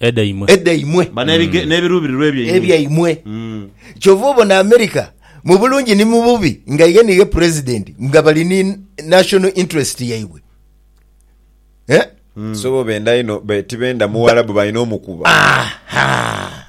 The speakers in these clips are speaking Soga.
Edhaimwe. edhaimwe, Ba n'ebige- n'ebiruubirirwa ebyaimwe. ebyaimwe. Mm. Kyova obona America mu bulungi ni mu bubi nga ye ni ye president nga bali ni national interest yaibwe. Eh? So bo benda inho be- tibenda muwarabu balina omukuba. Aha.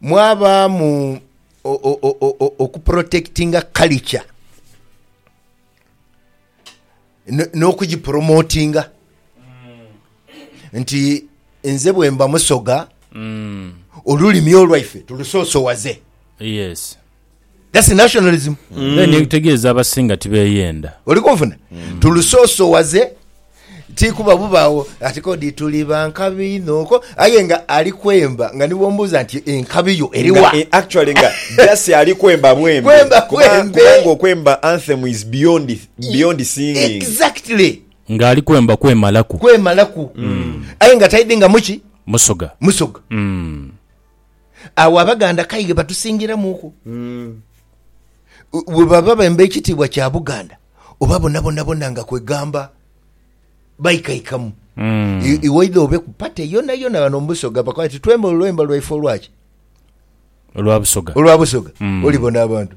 mwabaamu okuprotekitinga culture n'okugipromotinga nti nze bwemba Musoga olulimi olwaife tulusoosowaze. Yes. That's nationalism. Then ekitegeeza abasinga tibeyenda. Oli kunfuna? Tulusoosowaze ti kuba bubaawo ati kodi tuli ba nkabi inho ko aye nga ali kwemba nga ni bw'omubuuza nti enkabi yo eri Nga, wa? eh, actually nga just ali kwemba bwembe. Kwemba Kuba- bwembe. Kubanga okwemba anthem is beyond, beyond singing. Exactly. Ng'ali kwemba kwemalaku. Kwemalaku. Aye nga taidingamu ki? Musoga. Musoga. Mm. Agho Abaganda k'aye batusingiramuuku. Bwe baba bemba ekitiibwa kya Buganda oba bonabonabona nga kwegamba baikaikamu. Iwaidha obe ku pate yonayona ghano mu Busoga bakoba bati twemba olwemba lwaife olwaki? Olwa Busoga. Olwa Busoga. Olibona abantu.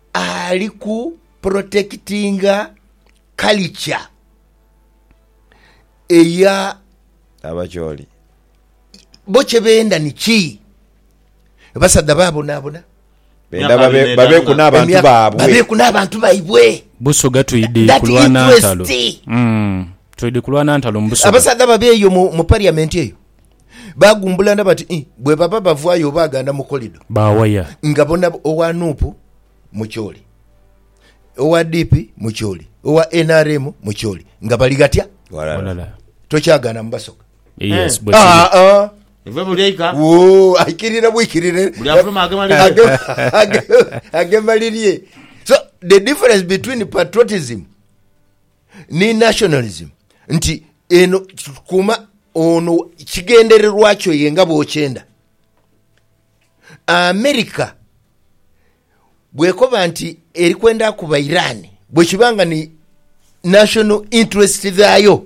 Ali ku protectinga culture eya. Abacholi. Bo kye benda ni ki? Basadha babonabona. Benda babeku n'abantu baabwe. Babeku n'abantu baibwe. Busoga twidi kulwana ntalo. That interest. Twidi kulwana ntalo mu Busoga. Abasadha babe eyo mu parliament eyo. Baagumbulana bati, Ii, bwebaba bavaayo obaaganda mu kolido. Baawaya. Nga bona owa nup mukyoli, owa DP mukyoli, owa nrm mukyoli nga bali ghatya? Ghalala. Tokyagaana mu basoga. Yes, bwe kiri. Aa-a. Ive buli eika. Woo, aikirira bwikirire. Buli afuluma agema lirye. Agema, agema, agema lirye. So, the difference between patriotism. ni nationalism nti eno kuma ono kigendererwa kyo ye nga bwokyenda America bwekoba nti eri kwenda kuba Iran bwekiba nga ni national interest dhayo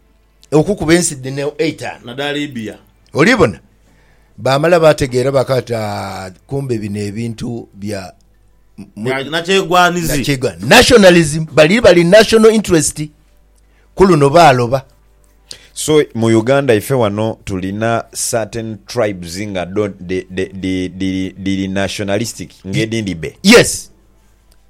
okukuba ensi dhino eitanu. Nadha Libya. Oli bona? Baamala baategeera baakaaba ati, Aah, kumbe bino ebintu bya. Bya nakyegwanizi. Nakyegwa, nationalism. Bali bali national interest. Ku luno baaloba. So, mu Uganda ife wano tulina certain tribes nga dho dhi, dhi, dhi, dhiri nationalistic ng'edhindhi be. Yes.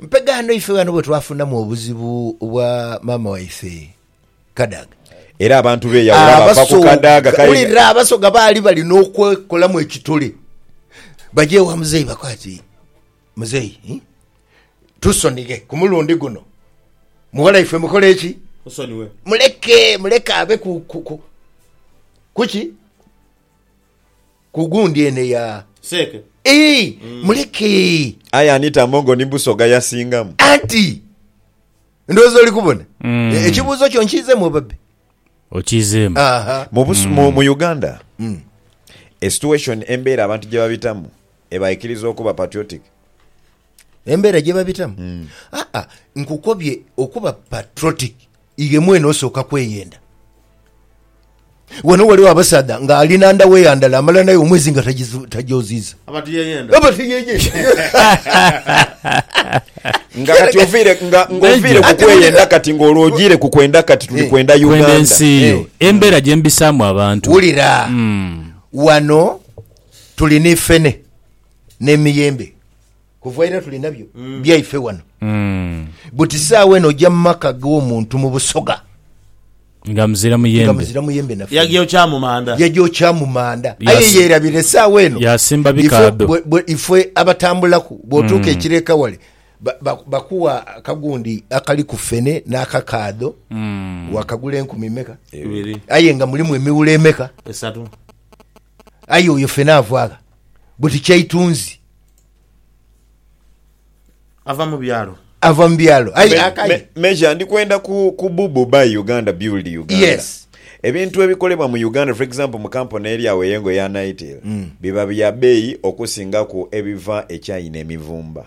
Mpegaano ife ghano bwe twafunamu obuzibu bwa maama waife Kadaga. Era abantu beeyawula bava ku Kadaga. Abasoga, wulira, Abasoga baali balina okwekolamu ekitole baje ewa Muzeeyi bakoe ati, Muzeeyi, hii, tusonighe ku mulundi guno. Mughala waife mukole ki? Musonighe. Muleke, muleke abe ku, ku, ku, ku ki? Ku gundi ene ya. Seeke. Eei! Muleke! Aye ani Tamongo ni Busoga yasingamu? Anti! Ndowooza oli kubona. E- Ekibuuzo kyo nkiizeemu oba bbe? Okiizeemu. Aha. Mu, Bus- mu, mu Uganda, a situation, embeera abantu gye babitamu ebaikiriza okuba patriotic. embera gyebabitamu mm. aa ah, ah, nkukobye okuba patriotic iye mwene osooka kweyenda wano waliwo abasaadha nga ali nanda weyandala amala naye omwezi nga tajoziza abatiyeyenda nga kati ovire nga ngovire kukweyenda kati nga olwojire kukwenda kati tuli eh. kwenda uganda ensi yo eh. embera gyembisamu abantu wulira mm. wano tulina ifene n'emiyembe kuva ira tuli nabyo mm. byaife wano mm. buti saawa eno ojja mu maka g'omuntu mu busoga nga muzira muyembe yagyokya mu manda yagyokya mu manda aye yerabira esaawa eno yasimba bikaado ife abatambulaku bwotuuka mm. ekireka wale bakuwa akagundi akali ku fene n'akakaado mm. wakagula enkumi meka aye nga mulimu emiwula emeka esatu Aye oyo fena avaagha buti kyaitunzi. Ava mu byalo. Ava mu byalo. Aye akaye. Major ndi kwenda ku ku bubu buy Uganda build Uganda. Yes. Ebintu ebikolebwa mu Uganda for example mu kampuni eri agho eyengo eya Nitel biba bya beeyi okusingaku ebiva e China emivumba.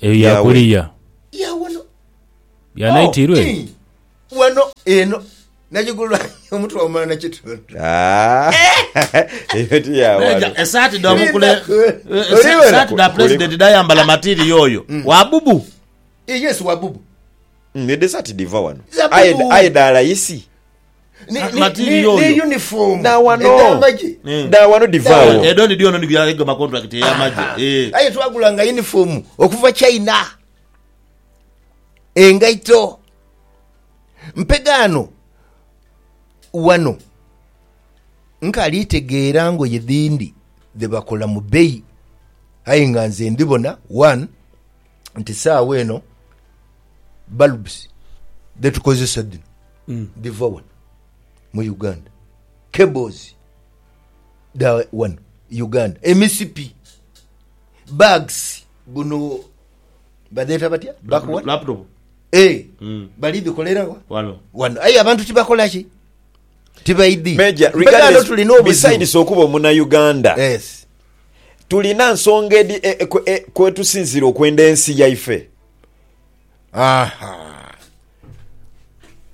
Eyo ya kuliya. Ya naitiirwa eyo? Eyo ti ya wano. Esaati dha mukule esaati dha pulezidenti dhayambala matiiriya oyo? Wa bubu? Eyo dhesaati dhiva wano? Aye dha layisi? Aye twagulanga yunifoomu okuva China, engaito mpegaano. Wano nkaali tegeera ngoye dhindi dhebakola mu beeyi aye nga nze ndhibona one. nti saagho eno bulbs dhetukozesa dhino mm. dhiva wano mu uganda cables da wano uganda emisipi bags buno badheta batya bakuwalaptop e eh, mm. bali dhikolerawa wano wano aye abantu tibakolaki tibaidhi tulina obuzibu okuba omunauganda yes. tulina nsonga edhi kwetusinziira okwenda ensi yaife. Aha!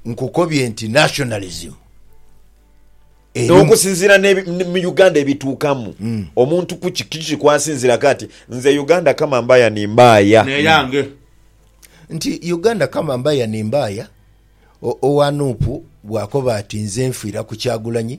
Nkukobye nti nationalism erimu. Okusinziira mu Uganda ebituukamu, omuntu kuki kiki kwasinziiraku ati nze Uganda kama mbaya ni mbaaya. Neyange. Nti Uganda kama mbaya ni mbaaya, owa Nup bwakoba ati nze nfiira ku Kyagulanyi,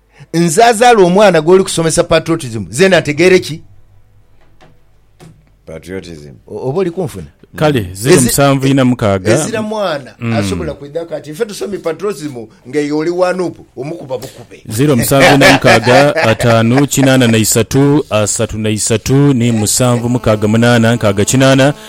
Nze azaala omwana gwoli kusomesa patriotism zeena ntegeere ki? Patriotism. O- Oba oli kunfuna? Kale ziro Ezi- musanvu ina mukaaga. Ezira mwana asobola kwidhaku ati nfe tusomye patriotism nga eyo oli wa nup omukuba bukube. Ziro musanvu ina mukaaga ataanu kinaana na isatu asatu na isatu ni musanvu mukaaga munaana nkaaga kinaana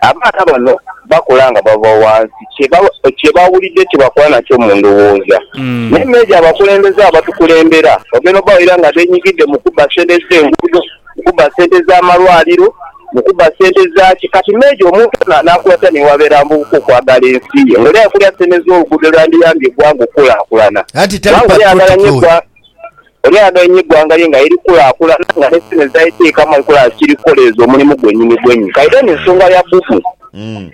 Abaana bano bakula nga bava wansi kye bawulidde kye bakola nakyo mu ndhowooza. Naye meeja abakulembeze abatukulembera bagenda obawaira nga benyigidde mu kubba ssente z'enguudo, mu kubba ssente z'amalwaliro, mu kubba ssente zaaki. Kati meeja omuntu ono anaakula atya ni bwabeera avubuka okwagala ensi ye ng'oli aye kulya ssente z'oluguudo olwandiyambye eggwanga okukulaakulana? Kubanga oli ayagala nnyo eggwanga. Oli ayagainhe eighanga lye nga liri kukulaakulana, nga n'ensi dhino edhitali teeka mu nkola kiri kukoleeza omulimu gwenyinigwenyi. Kaidha eno ensonga ya bubu.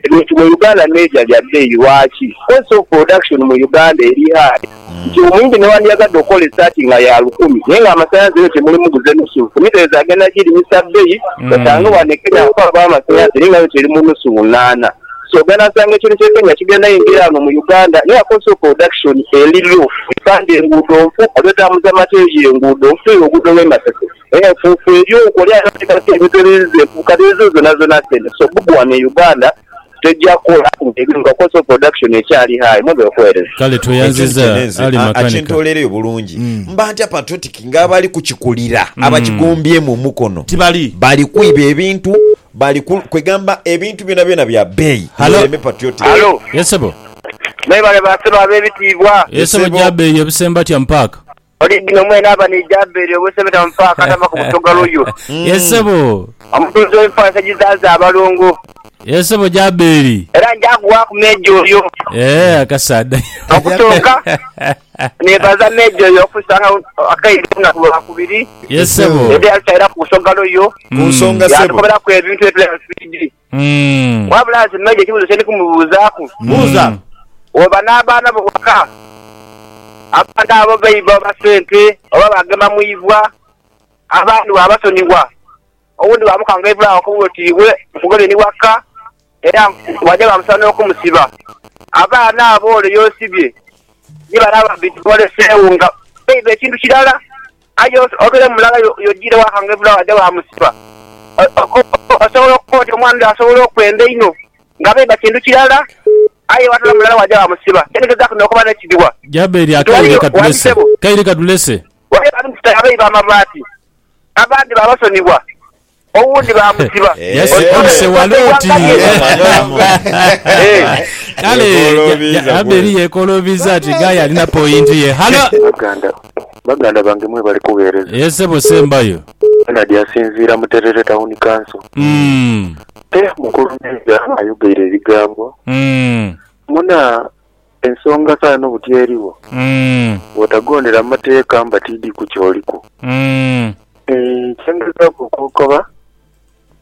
Ebintu mu Uganda meeja bya bbeeyi. Lwaki? Cost of production mu Uganda eri high. Nti omuyindi newandiyagadde okukola esaati nga ya lukumi naye nga amasanhalaze eno temuli muguze nusu. Ku mitereeze agenda girimisa bbeeyi, osange wano e Kenya abakola baamasanhalaze naye nga yo teri mu nusu lunaana. Soganasanga ekintu kye Kenya kigenda yingira ghano mu Uganda naye akoze oproduction eli low epande enguudo nfu adwetamuza materia enguudo nfu eyo oguudo lwe Masese enfufu elyo nkole ateekaku ebintu ebiziza enfufu kati ezo zona zona sente so bubu ghano e Uganda tegya kola nga cost of production ekyali high mwebale okuwereza. Kale Ekyo tweyanziza nkye nenze Ali aa makanika. akintolereyo bulungi mba ntya patriotic nga abali kukikulira abakigombyeemu omukono Tibali. bali kwiba ebintu Bali ku, kwegamba ebintu byonabyona bya beeyi, Halo. mwereme patriotic. Halo. Yes sebo. Mwebale ba sebo abebitiibwa. Yes sebo sebo. gya beeyi ebusembatya mu paaka. Original mwene aba ni gya beeyi ebusembatya mu paaka atava ku busoga luyu. Yes sebo. Omutunzi w'enfaansa egizaaza abalongo. Yes sebo gya beeyi. Era nja kughaku meeja oyo. Eeh akasaadha. Okusooka, Neebaza meeja oyo okusanga akaire ku lunaku lwa kubiri Yes sebo. era yatusairaku ku nsogalo yo, Ku nsonga sebo. yaatukoberaku ebintu bye tulina swiidi. Mm. Wabula nze meeja ekibuuzo kye ndi kumubuuzaaku, Buuza. oba n'abaana bo waka, abaana abo baiba oba sente oba baagema mu ibwa, abaani waabasonyiwa? Owundi baamukangaivula okumuwa oti iwe mugobye ni waka, era bwaja baamusaba n'okumusiba. Abaana abo ole y'osibye ni bale ababbi tiboleseegho nga baiba ekintu kirala, aye obeere mulala y'ojiire waakangaivula baaja baamusiba. Osobola okukoba oti omwana oli asobola okwenda inho nga baiba kintu kirala, aye waatoola mulala waaja waamusiba. Kyendigezaku n'okuba n'ekidhiwa. Jabbeeri akaire katulese. Kaire katulese. Ghaligho ab'enkuta ya baiba amabaati, abandi baabasonibwa, owundi baamusiba. Yes, Oli Oli Sewaloti. Kale Yekolobiiza ya- Abeli kweli. yekolobiza ati guy alina point ye. Halo. baganda baganda bange mwebale kugheereza Yes, sebo sembayo. benard asinziira mu terere tawuni kanso Mm. te mukulu meeja ayogeire ebigambo Mm. muna Ensonga kale no buti eriwo, bwotagondera mateeka mba tiidi ku kyoliku. Kye ngezaaku okokoba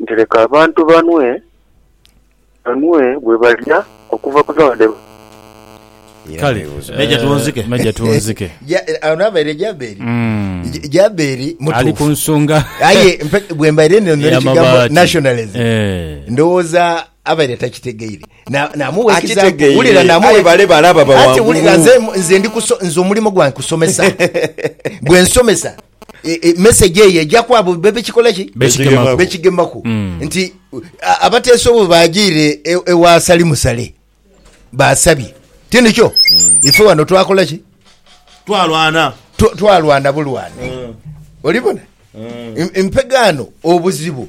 nti leka abantu banwe, banwe bwe balya okuva ku zaabu dhe bafunye. Kale, Meja Twonzike. Meja Twonzike. Ja, ono abaire Jaberi. Ja, Jaberi mutuufu. Ali ku nsonga. Aye bwembaire ninonera ekigambo nationalism, ndowooza abaire takitegeire. Akitegeire, aye bale balaba baghangulu. E, e message eyo eja kwabo bebekikolaki bekigemaku mm. nti abateesa obwo bagiire e, ewa sali musale basabye tinikyo mm. ife wano twakolaki twalwana twalwana bulwana mm. olibona mm. empegaano obuzibu